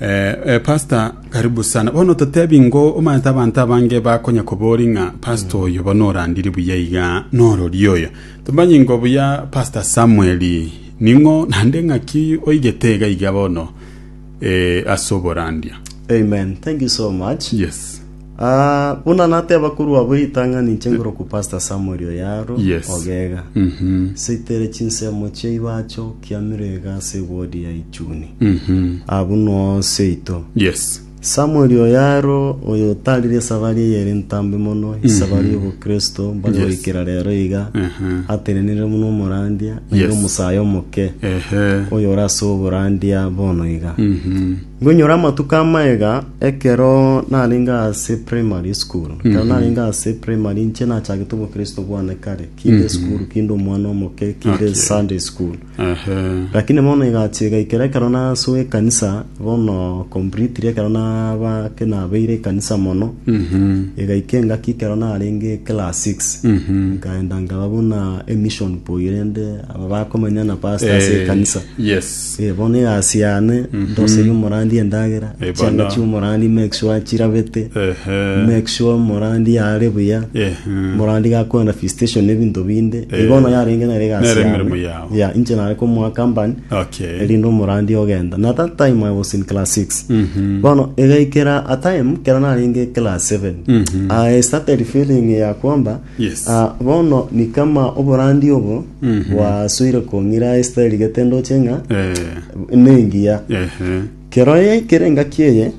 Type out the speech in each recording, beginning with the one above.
Eh, pastor karibu sana bono totebi ngo omanyete abanto abange bakonya kobori ng'a pastor oyo bono orandiri buya iga norori oyo tomanyi ngo buya pastor samuel ning'o nande ng'aki oigete iga iga bono eh, ase oborandia amen thank you so much yes Ah, buna nateba korwa abwo ritang'ani inche ngoroku Pastor Samuel Oyaro Yes. Ogega. Mhm. Seitere chinsemo chia ibacho kiamire iga ase wodi ya Ichuni. Mhm. Abu no seito. Yes. Samuel Oyaro oyo otarire esabari eye ere ntambe mono, esabari y'obokristo mbare Yes. goikera rero iga. Aha. Atenenire muno omorandia, naende Yes. omosayo omoke. Ehe. Oyo ore ase oborandia bono iga. Mhm. Nkoinyora amatuko amaiga, ekero narenge ase primary school, ekero narenge ase primary inche nachagete obokristo bwane kare, kinde school, kinde omwana omoke, kinde Okay. Sunday school. Ehe. Lakini bono egachi egaikera ekero nasoa ekanisa, bono completely ekero naba ke nabeire ekanisa mono, Mhm. egaika engaki ekero narenge class 6 Mhm. nkaenda nkaba buna emission boy rende aba bakomenya na pastor ase Eh, ekanisa yes Eh, bono egasi yane ndoseri omorandi endagera Eh, chianga bono. chi'omorandi make sure chirabete Ehe. make sure omorandi are buya Eh, mm. morandi gakorana visitation ebinto binde Eh. eh. bono yarenge nere egasi Nere yane. emeremo yao. ya inche nare komoa company Okay. erinde omorandi ogenda na that time i was in class 6 Mhm. bono egaikera a time kera narenge class 7 Mhm. i started feeling ya kwamba Yes. Ah, bono ni kama oborandia obo bwasoire kong'ira Esteri gete ndoche ng'a Eh, nengiya ehe. kero ye kere ngaki eye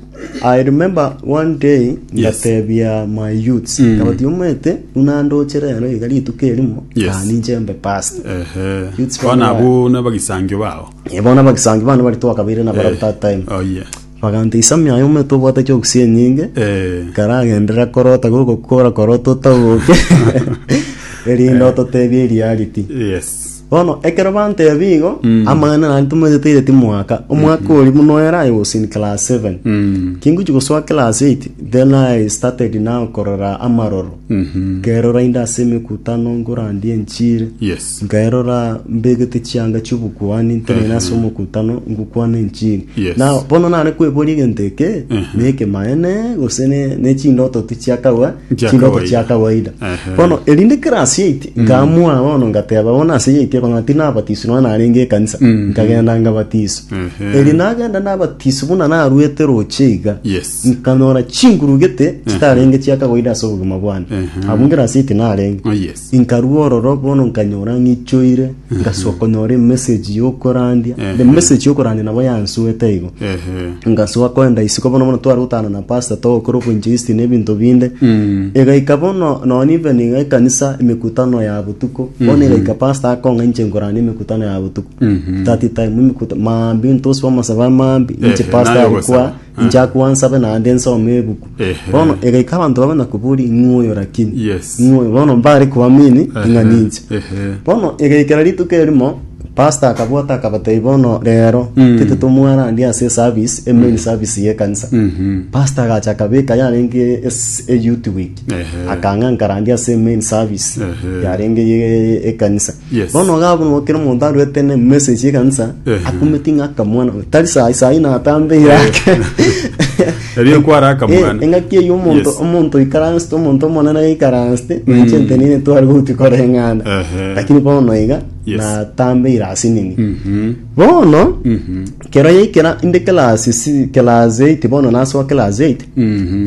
i remember one day ngatebia my youths Mm. kabati omwete buna ndoche rero iga rituko erimo Yes. ah, ninche mbe past Ehe. Youths Bono bana abwo nabagisangio bao. ebona bagisangi bana bari twakabaire na barab that time Oh, yes. Baganta isami aye omonto obwate chiofisi enyinge, karagenderere akorota gokokora korota otaboke, erinde ototebie eriarity. Yes. Bono ekero bantebia igo, amang'ana nari tomaeteteire timwaka. Omwaka oria buna oyo era I was in class seven. Mm. Kingochi gosoa class eight, then I started now korora amaroro. Mhm. Kerora inde ase emekutano, nkorandie enchiri. Yes. nkairora mbegete chianga chi'obokuani ntenene ase omokutano ngokwana enchiri Yes. na bono nare kweboria egento eke na ekemaene gose ne- ne chindoto ti chiakawa Chia chindoto kawaida. chia kawaida Ehe. bono erinde class yait nkamua bono ngateba bono ase yait eko ng'a tinabatiswe nonya narenge ekanisa nkagenda ngabatiswa Ehe. eri nagenda nabatiswa buna narwete roche iga Yes. nkanyora chingurugete chitarenge chiakawaida ase obogima bwane Ehe. abwo ngerasiti narenge Oh, yes. Nkarua ororo bono nkanyora ng'ichoire, ngasoa konyora emessage y'okorandia. The message y'okorandia nabo yansuete igo. Ehe. ngasoa koenda isiko bono bono tware gotana na pastor togokora obonchoisti na ebinto binde egaika bono nonye even iga ekanisa emekutano ya botuko bono egaika pastor akong'a inche nkorande emekutano ya botuko that time emekuta maambia intoswa amasabo amaambi inche Ehe, pastor naye ari kwa ogosaba. Inchake gwansabe naende nsome ebuku. Ehe. Bono egaika abanto babe nakoboria ing'we oyo rakini. Yes. Ing'we oyo. Bono mbare koamini ng'a ninche. Ehe. Bono egaikera rituko erimo pastor akabwata akabatebia bono rero tete tomwarandie ase eservice emain service y'ekanisa. Pastor agacha akabeka yarenge es- eyouth week Ehe. akang'a nkarandie ase emain service Ehe. yarenge ye ekanisa. Yes. bono iga abwo kera omonto arwete ne message ekanisa Ehe. akumeti ng'a akamwana tari sai sai natambe yake Erio kwara akamwana. Eh, engaki eyi omonto Yes. omonto ikaransete omonto omonene aikaransete nanche Mm. ntenine twari gouti koreng'ana Ehe. lakini bono iga Yes. natambe irasinini Mhm. bono Mhm. Kero yaikera inde class si- class 8 bono nasoa class 8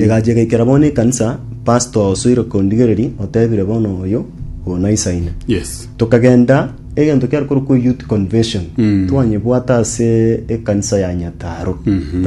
egacha egaikera bono ekanisa pastor osoire kondigereria otebire bono oyo oyo naisaine yes tokagenda egento kiare korokwa youth convention twanyebwata ase ekanisa ya nyataro That